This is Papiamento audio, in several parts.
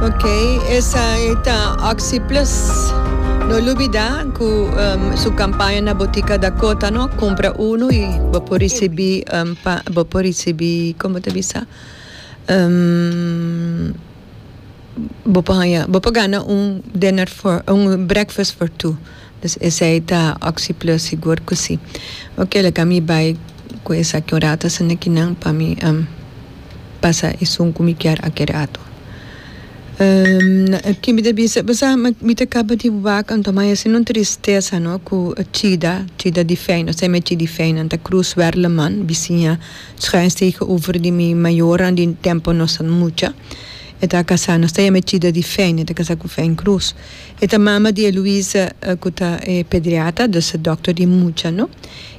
Ok esai ta Oxy Plus. No lubida cu su campaña na Botica Dakota no, cumpra uno y bo por ricibi bo por ricibi como ta bisa bo por haya bo por gana un dinner for un breakfast for two. Esei ta oxyplus sigur cu si. Ok laga mi bay cu esaki un rato hasta nakinan pa mi pasa esun cu mi kier aki rato. Aki mi ta bisa bo sa mi ta caba di wak anto ma e sido tristesa no cu chida chida di fey no esei mi a chida di fey nan ta Cruz Werleman bisiña schuinstegen over di mi mayornan di tempo nos ta mucha e ta casa no esei mi a chida di fey nan e ta casa cu fey Cruz. E ta mama di Eloise ku ta e pediatra, dus dòkter di mucha no,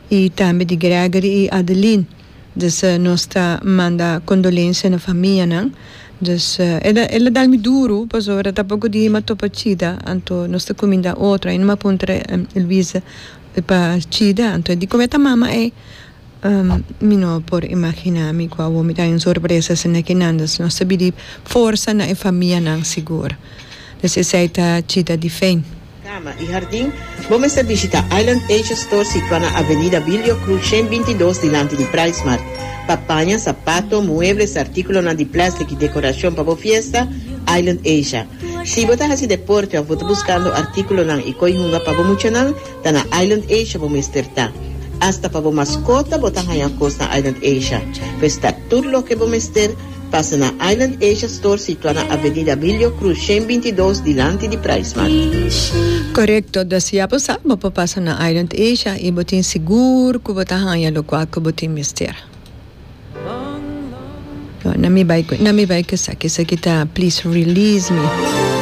i tambe di Gregory i Adeline. Dus nos ta manda kondolensia na famianan. Dus el a dal mi duru pasobra ta poku di hima topa chida, anto nos ta kuminda otro. Ai no mi a puntra Eloise pa chida, anto di koe ta mama ei? Mi no a por imagina mi ku awor mi ta den sorpresa si na kinan nos ta bin di forsa na e famianan sigur. Pues esei ta chita di fen. Kama i hardin, Bo mester bishita Island Asia Store situá na Avenida Bilio Cruz shen binti dos dilanti di Price Mart. Pa paña, sapato, muebles, artíkulonan di plèstik i dekorashon pa bo fiesta, Island Asia. Si bo ta hasi deporte òf bo ta buskando artíkulonan i koi hunga pa bo muchanan, Ta na Island Asia bo mester ta. Asta pa bo maskota bo ta haña kos na Island Asia. Pues ta tur loke bo mester, pasa na Island Asia Store situá na Avenida Abilio Cruz shen binti i dos dilanti di Pricemart. Korekto, dus ya bo sa bo por pasa na Island Asia i bo tin sigur ku bo ta haña lokual ku bo tin mester. Nan mi bai ku esaki, esaki ta please release me.